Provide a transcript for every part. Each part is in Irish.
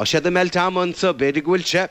Tá siad ag meilt ama anso. B'fhéidir go bhfuil sé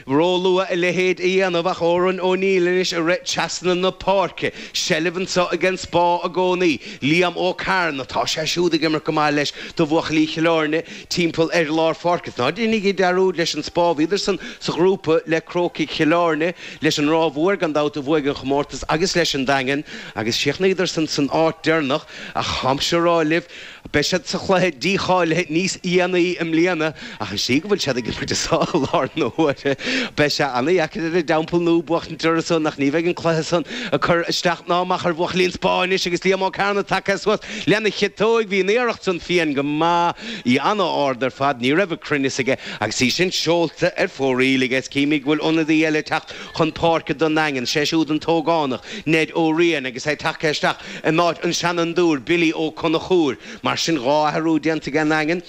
róluath a leithéid a dhéanamh ach Odhrán Ó Néill anois ag rith trasna na páirce, seilbh anso ag an Spá i gcónaí, Liam Ó Cearna, tá sé siúd ag imirt go maith leis do bhuachaillí Chill Airne timpeall ar lár páirce. Ná déanaigí dearúd leis an Spá, bhíodarsan sa ghrúpa le Crócaigh Chill Airne, leis an Ráth Mhór gan dabht a bhuaigh an chomórtas agus leis an Daingean agus chríochnaíodarsan san áit deireanach ach táimse a rá libh Beidh siad sa chluiche dícháilithe níos déanaí i mbliana, ach an slí go bhfuil siad ag imirt anso i láthair na huaire, beidh sé ana-dheacair ar an dTeampall Nua buachtaint orthu san ach ní bheidh an cluiche san ag cur isteach ná amach ar bhuachaillí an Spá anois agus Liam Ó Cearna tagtha suas lena chiotóig. Bhí an iarracht san fiain go maith, í ana-ard ar fad, ní raibh an cruinneas aige agus í sin seolta ar fóraoil aige. Is címid go bhfuil ionadaí eile ag teacht chun páirce don nDaingean, sé siúd an t-ógánach, Ned Ó Riain, agus é tagtha isteach. in áit an seanfhondúir Billy Ó Conchúir. Mar sin, dhá athrú déanta aige an nDaingean,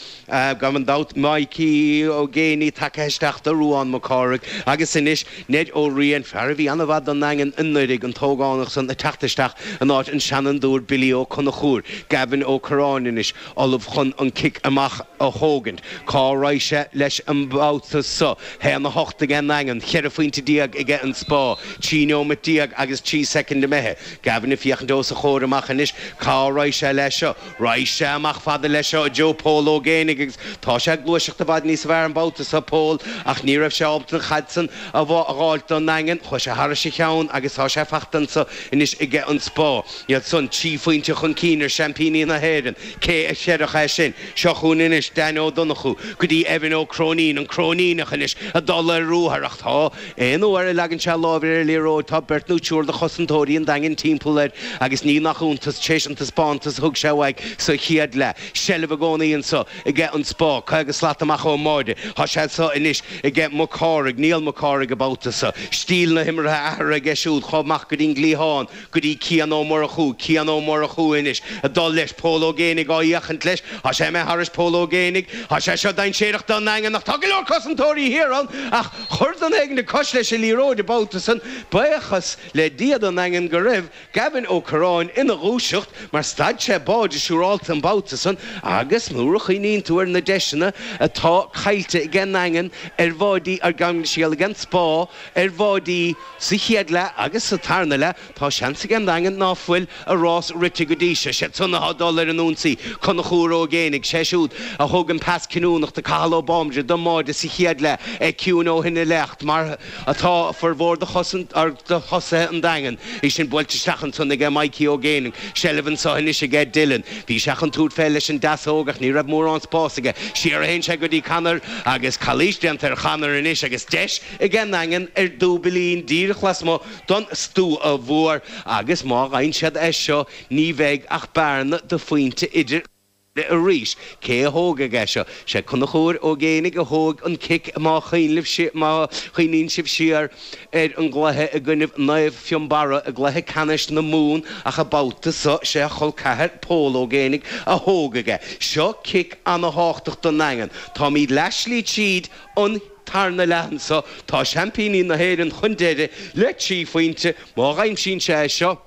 gan dabht, Micí Ó Géibheannaigh tagtha isteach do Ruán Mac Cárthaigh agus anois Ned Ó Riain, fear a bhí ana-mhaith don nDaingean anuraidh, an t-ógánach san ag teacht isteach in áit an seanfhondúir Billy Ó Conchúir. Gavin Ó Corráin anois ullamh chun an cic amach a thógaint. Cá raghaidh sé leis an mbabhta so? A haon a hocht aige nDaingean, cheithre phointe déag aige an Spá, trí neomat déag agus trí soicind imithe. Gavin ag féachaint os a chomhair amach anois. Cá raghaidh sé le seo? Raghaidh sé amach fada le seo, i dtreo Pól Ó Géibheannaigh, agus tá sé ag gluaiseacht i bhfad níos fearr an babhta so, Pól, ach ní raibh sé ábalta an chaid san a dh'fháilt don nDaingean. Chuaigh sé thairis a cheann agus tá sé fachta anso anois aige an Spá. Iad san trí phointe chun cinn ar seaimpíní na hÉireann. Cé a chreidfeadh é sin? Seo chugainn anois Dan Ó Donnchú go dtí Evan Ó Cróinín, an Cróiníneach anois, ag dul ar ruathar, ach tá. Aon uair a leagann sé a lámh ar liathróid tá beirt nó triúr de chosantóirí an Daingin timpeall air agus ní nach iontas, tar éis an taispeántas a thug sé uaidh sa chéad leath, seilbh i gcónaí anso aige an Spá, 50 slat amach ón mbáide. Tá sé anso anois aige Mac Cárthaigh, Niall Mac Cárthaigh, an babhta so. Stíl na himeartha á athrú aige siúd chomh maith go dtí'n gcliathán. go dtí Cian Ó Murchú, Cian Ó Murchú, anois ag dul leis, Pól Ó Géibheannaigh á fhéachaint leis, thá sé imithe thairis Pól Ó Géibheannaigh, Thá sé seo dainséarach don nDaingean ach tá go leor cosantóirí thiar ann ach chuir duine éigin cos leis an liathróid an babhta san, baochas le Dia don nDaingean go raibh Gavin Ó Corráin ina dhúiseacht mar stad sé báide siúrálta an babhta san agus nuair a chuimhníonn tú ar na deiseanna atá caillte ag an nDaingean ar bháidí ar Ghamingsheel aige an Spá ar bháidí Sa chéad leath agus sa tarna leath tá seans aige an Daingean ná fuil a rás rite go dtí seo. Siad san athá dul ar an ionsaí, Conchúr Ó Géinigh, sé siúd a thug an pas cinniúnach do Cathal Ó Bambaire don mbáide sa chéad leath, é ciúin ó shin i leith ach mar atá furmhór do thosaithe an Daingean é sin buailte isteach ansan aige Maidhcí Ó Géinigh. Seilbh anso anois aige Dylan. Bhí sé chun tabhairt fé leis an deasóg ach ní raibh mórán spás aige. Siar a théann sé go dtí Connor agus calaois déanta ar Chonnor anois agus deis aige an nDaingean ar dúbailín díreach lasmuigh don Stua Mhór agus má fhaigheann siad é seo ní bheidh ach bearna de phointe idir iad arís. Cé a thógfaidh é seo? Sé Conchúr Ó Géinigh a thógfaidh an cic má má chuimhníonn sibh siar ar an gcluiche i gcoinnibh Naomh Fionnbarra i gcluiche ceannais na Mumhan ach an babhta so sé a cholceathair Pól Ó Géinigh a thógfaidh é seo, cic ana-tháchtach don nDaingean. Táimíd leath slí tríd an tarna leath anso, tá seaimpíní na hÉireann chun deiridh le trí phointe. Má aimsíonn sé é seo,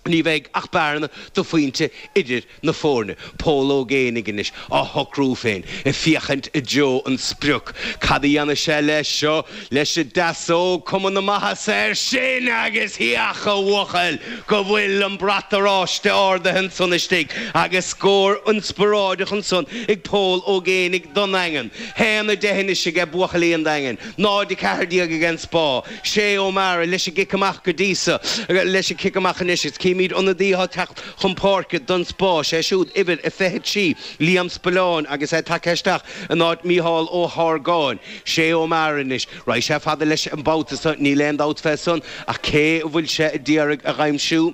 ní bheidh ach bearna de phointe idir na foirne. Pól Ó Géinigh anois, á shocrú féin, ag féachaint i dtreo an sprioc. Cad a dhéanfaidh sé leis seo? Leis an ndeasóg, cuma na maitheasa air sin agus féach a bhuachaill go bhfuil an brat oráiste ardaithe ansan istigh agus scór ionspioráideach ansan ag Pól Ó Géinigh don nDaingean. 1, 10 anois aige buachaillí an Daingin, 0, 14 ag an Spá, Shay Ó Meára, leis an gcic amach go dtí so, leis an cic amach anois agus címid ionadaí atá ag teacht chun páirce don Spá, sé siúd uimhir a 23, Liam Spillane agus é tagtha isteach in áit Micheál Ó hArgáin, Shay Ó Meára anois, raghaidh sé fada leis an babhta so, níl aon dabht fé san, ach cé a bhfuil sé a d'iarraidh a dh'aimsiú?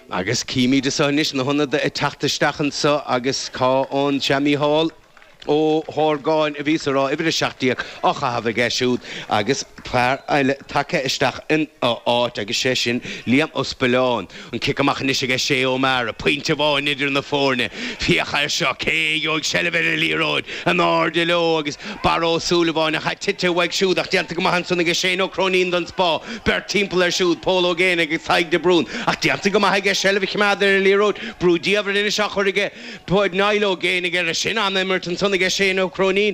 Agus címid anseo anois, na hionadaithe ag teacht isteach anseo agus cá fhan sé, Mícheál Ó hArgáin a bhí sa, raibh uimhir 17 á chaitheamh aige siúd agus fear eile tagtha isteach ina áit agus sé sin Liam Ó Spillane. An cic amach anois aige Shay O'Meara, pointe amháin idir na foirne. Féach air seo, cé a gheobhaidh seilbh ar an liathróid? In airde leo agus Barra Ó Súilleabháin, ach tite uaidh siúd ach déanta go maith ansan aige Shane Ó Cróinín don Spá. Beirt timpeall air siúd, Pól Ó Géinigh, Tadhg de Brún, ach déanta go maith aige seilbh a choimeád ar an liathróid, brú diamhair anois á chur aige, bhuel, Niall Ó Géinigh air sin, an-imirt ansan aige Shane Ó Cróinín,